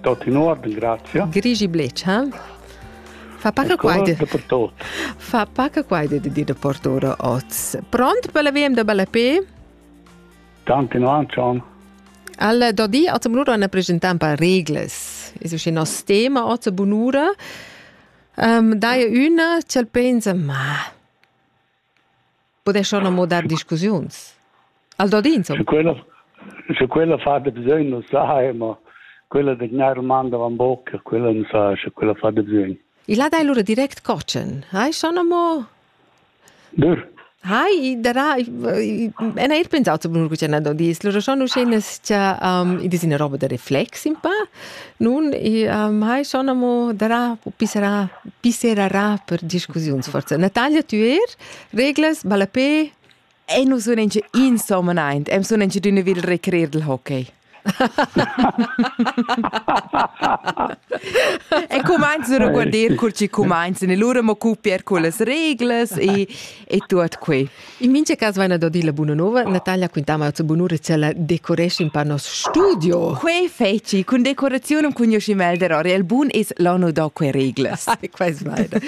Tot tenor ringrazia. Grigi Bletschal. Fa pa che quai Fa pa che quai di di da portura oz. Pront per la VM da Ballapé? Tanti no Anton. Al Dodi ha zum lura una presentan per regles. Es uschi nos tema oz bunura. Um, dai una, c'el pensa, ma Podescha non mo dar discussiuns? Al dod insomma? Quella, sche quella fa de bisogn, lo sai, ma quella degna domanda van bocca, quella non sa, sche quella fa de bisogn. Il ha dai lura direct cocen, hai schon mo... Dur. Hai, darà, en eir pensau zu bunur cucena do dis, lura schon uschè nes cha um, i dis ina roba da reflex in pa, Nun i um, hai schon amo darà u pisserà, pisserarà per discussiuns forza. Natalia, tü eir? Reglas, ballapè? E nu sun inch insomma aint, am sun inch d'üna vil recreer del hockey. e cumainzano a guarder cur chi cumainzan e lura mo cupier con las reglas e, e tuot que. In mincha cas vaina da dir la buna nova. Natalia quintava zur bunura cha la decoresci in pa nos studio. Quei feci cun decoraziun un cugnoscimel der Oriel Bun es l'anno da que reglas. Quais vaina.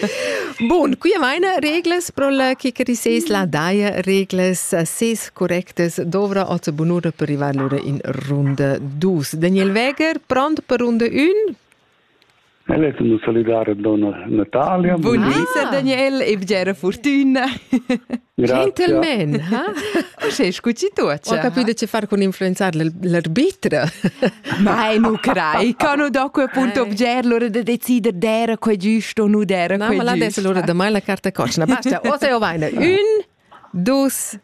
Bun, qui vaina reglas pro la chicari seis la daia reglas ses correctas dovra a zur bunura per arrivar lura in runda 2. Daniel Weger, pront per runda 1? Ella è tenuta salidare donna Natalia. Bun di, sir Daniel, e bgera fortuna. Gentleman, ha? Uschè scucci tu, Ho capito che far con influenzare l'arbitra. Ma nu crai, cano dopo appunto bger l'ora da decider d'era quei giusto o nu d'era quei giusto. No, ma l'adesso l'ora da mai la carta corna. Basta, o sei o vaina. Un, dus,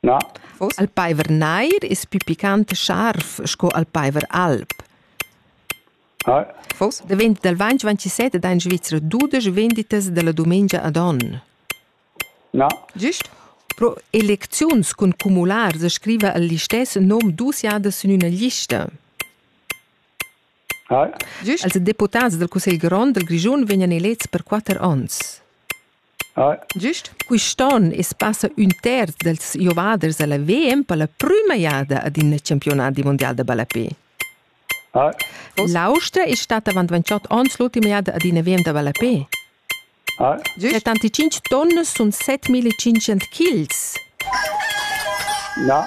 Na. Al paiver nair es pü picant e scharf sco al paiver alb. Ah. Fos davent dal vainch vantisset ed ha in Svizra dudesch venditas da la dumengia ad on. Na. Gist? Pro elecziuns cun cumulars scriva el listess nom dus jadas sün üna lista. Ah. Gist? Als deputats dal Cussegl grond dal Grischun vegnan elets per quatter ons. Gist quist'on es passa ün terz dals giovaders a la VM per la prüma jada ad in campiunat mundial da ballapè. L'Austria es stata avant 28 ons l'ultima jada ad ina VM da ballapè. Settantcinque tonne sun 7500 kils. Na.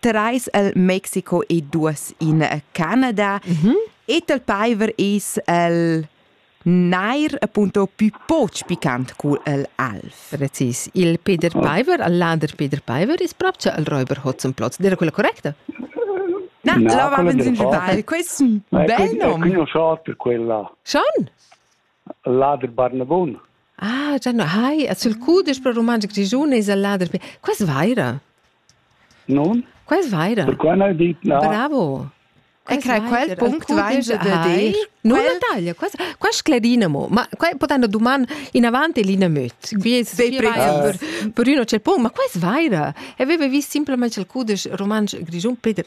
Terais el Mexico e duos in Canada. Mm -hmm. Et el paiver es el neir appunto più poch picant cul el alf. Precis. Il Peter Paiver, al lader Peter Paiver, is proprio al Räuber Hotzenplotz. Era quella correcta? No, no la avevamo in sbaglio. Questo è un bel nome. È conosciuto per quella. Schon? Lader Barnavon. Ah, già no. Hai, sul cudisch pro romansch grigione is al lader. Quest vaira? Non? Quais vaira? Perquai n'hai dit na. Bravo! E crai quel punct vaingia da dir. Nu da taglia, quas, quas sclerina mo. Ma quai pot una duman in avanti l'ina möt. Guies sei per, per uno c'è pun, ma quais vaira? E aveva vis simplesmente il cudesch romansch grigiun Peter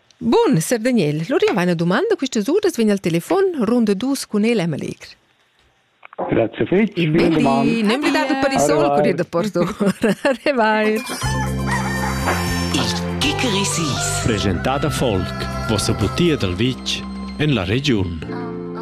Bun, sef Daniel, lur jau eine domanda quistas uras vegn al telefon runda dus cun el Emelic. Grazie fitch, vielen Dank. Ne emblidado per il sole corrier da Porto. Arrivai. Il Kickerisis. Presentada Volk, vossa butia dal vitg en la regiun.